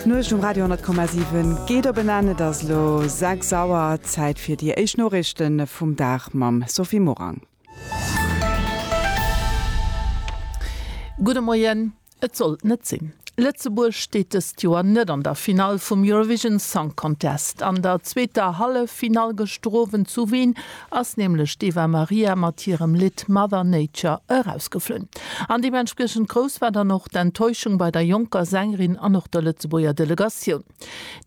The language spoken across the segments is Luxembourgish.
D'Nuecht um Radio 10,7 geet op en Enn. Et ass elo 6 Auer. Zäit fir déi éischt Noriichte vum Dag mam Sophie Morang. Gudde Moien. Et sollt net sinn. Lëtzebuerg steet dëst Joer net an der Finall vum Eurovision Song Contest. An der zweeter Halleffinall gëscht Owend zu Wien ass nämlech d'Eva Maria mat hirem Lidd Mother Nature erausgeflunn. An deementspriechend grouss war dann och d'Enttäuschung bei der jonker Sängerin an och der Lëtzebuerger Delegatioun.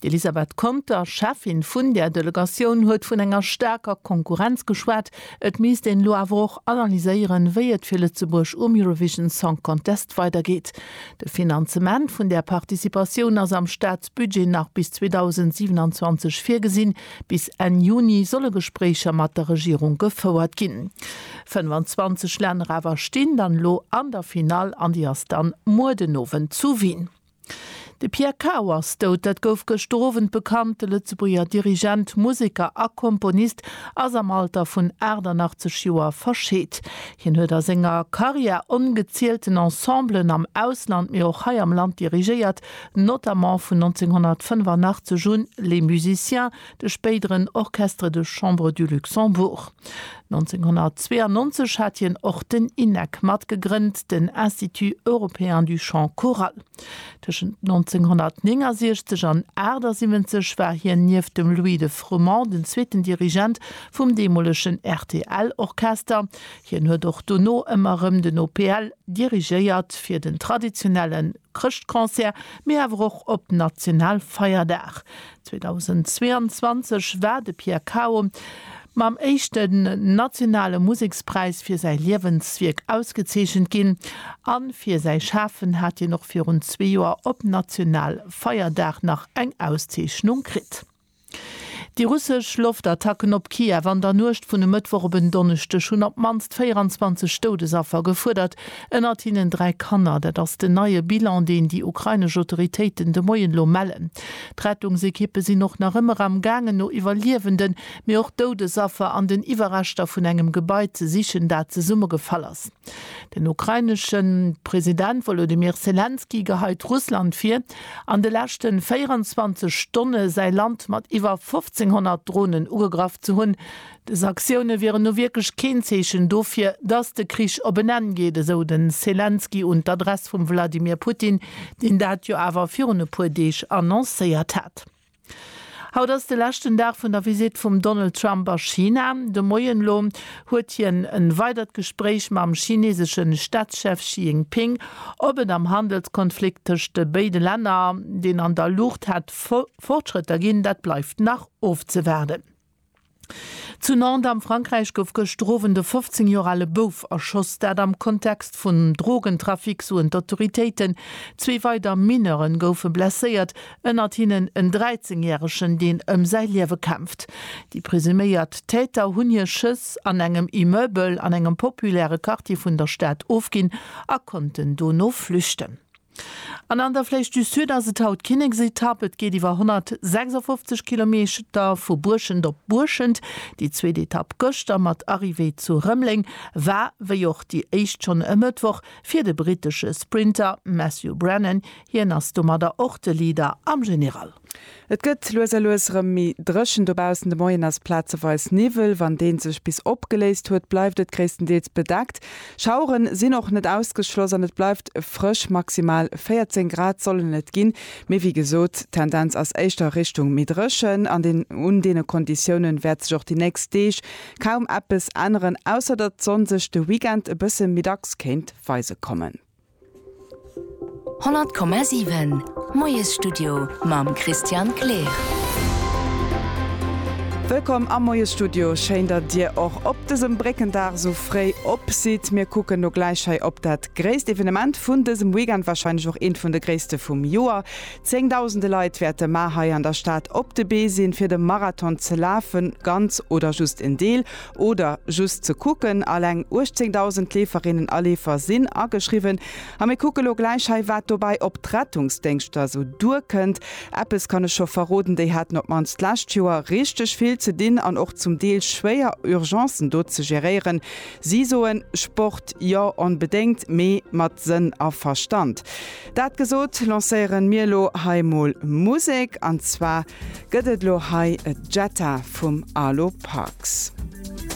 D'Elisabeth Conter, Cheffin vun där Delegatioun, huet vun enger staarker Konkurrenz geschwat. Et misst een elo awer och analyséieren, wéi et fir Lëtzebuerg um Eurovision Song Contest weidergeet. De Finanzement vun där Participatioun ass am Staatsbudget nach bis 2027 virgesinn. Bis Enn Juni solle Gespréicher mat der Regierung gefouert ginn. 25 Länner awer stinn dann elo an der Finall an déi ass dann muer den Owend zu Wien. De Pierre Cao ass dout, dat gouf gëschter Owend bekannt. De Lëtzebuerger Dirigent, Museker a Komponist ass am Alter vun 88 Joer verscheet. Hien huet a senger Karriär ongezielten Ensemblen am Ausland, mee och hei am Land dirigéiert notamment vun 1985 un Les Musiciens, de spéideren Orchestre de Chambre du Luxembourg. 1992 hat hien och den INEC matgegrënnt, den Institut européen du chant choral. Tëschent 1969 an 78 war hien nieft dem Louis de Froment den zweeten Dirigent vum deemolegen rtl Orchester. Hien huet och dono ëmmer erëm den OPL dirigéiert, fir den traditionellen. Chrëschtconcert, mee awer och op Nationalfeierdag. 2022 war de Pierre Cao mam éischten nationale Musekspräis fir säi Liewenswierk ausgezeechent ginn a fir säi Schafen hat hien och virun zwee Joer op Nationalfeierdag nach eng Auszeechnung kritt. Déi russesch Loftattacken op Kiew an der Nuecht vun e Mëttwoch op en Donneschdeg hunn op d'mannst 24 Doudesaffer gefuerdert, ënnert hinnen dräi Kanner. Dat ass den neie Bilan, deen déi ukrainesch Autoritéiten de Moien elo mellen. D'Rettungsekippe sinn och nach ëmmer am gaangen no Iwwerliewenden, mee och Doudesaffer an den Iwwerreschter vun engem Gebai ze sichen, dat zesummegefall ass. Den ukrainesche President Wolodymyr Selenskyj geheit Russland vir, an de leschte 24 Stonne säi Land mat iwwer 1.500 Dronen ugegraff ze hunn. Dës Aktioune wieren nu wierklech keen Zeechen dofir, datt de Krich op en Enn geet, esou de Selenskyj un d'Adress vum Wladimir Putin, deen dat jo awer virun e puer Deeg annoncéiert hat. Haut ass de leschten Dag vun der Visitt vum Donald Trump a China. De Moien elo huet hien e weidert Gespréich mam chineesesche Staatschef Xi Jinping. Ob et am Handelskonflikt tëscht de béide Länner, deen an der Luucht hätt Fortschrëtter ginn, dat bleift nach ofzewaarden. Zu Nantes am Frankräich gouf gëscht Owend e 15 Joer ale Bouf erschoss, dat am Kontext vum Drogentrafic, soen d'Autoritéiten. Zwee weider Mineure goufe blesséiert, ënnert hinnen en 13 Järegen, deen ëm säi Liewe kämpft. Déi presuméiert Täter hunn hir Schëss an engem Immeubel an engem populäre Quartier vun der Stad ofginn a konnten dono flüchten. An an der Flèche du Sud ass et haut d'Kinneksetapp. Et geet iwwer 156 Kilometer vu Buerschent op Buerschent. Déi zweet Etapp gëschter mat Arrivée zu Rëmeleng war, wéi och déi éischt schonn e Mëttwoch, fir de brittesche Sprinter Matthew Brennan. Hien ass domadder och de Leader am General. Et gëtt lues a lues erëm méi dréchen dobaussen, de Moien ass plazeweis Niwwel, wann dee sech bis opgeléist huet, bleift et gréisstendeels bedeckt. Schauere sinn och net ausgeschloss an et bleift frësch, maximal 14 Grad sollen et ginn, mee wéi gesot, d'Tendenz ass éischter Richtung méi dréchen an un deene Konditioune wäert sech och déi nächst Deeg kaum eppes änneren, ausser datt d'Sonn sech de Weekend e bësse méi dacks kéint weise kommen. 100,7 Moiesstudio mam Christian Kleer. Wëllkomm am Moiesstudio. Schéin dat dir och op dësem Bréckendag sou fréi op sidd. Mir kucken lo gläich hei op dat gréisst Evenement vun dësem Weekend, wahrscheinlech och eent vun de gréisste vum Joer. Zéngdausende Leit wäerte mar hei an der Stad op de Bee sinn, fir de Marathon ze lafen, ganz oder just en Deel. Oder just ze kucken, alleng 18.000 Leeferinnen a Leefer sinn ageschriwwen. A mir kucke lo gläich hei, wat dobäi op d'Rettungsdéngschter esou duerkënnt. Eppes kann ech scho verroden, déi haten op d'mannst d'lescht Joer richteg vill ze dinn an och zum Deel schwéier Urgencen do ze geréieren. Si soen, Sport, jo onbedéngt, mee mat Sënn a Verstand. Dat gesot, lancéieren mir lo hei mol Musek an zwar gëtt et lo hei e Jetta vum Alo Parks.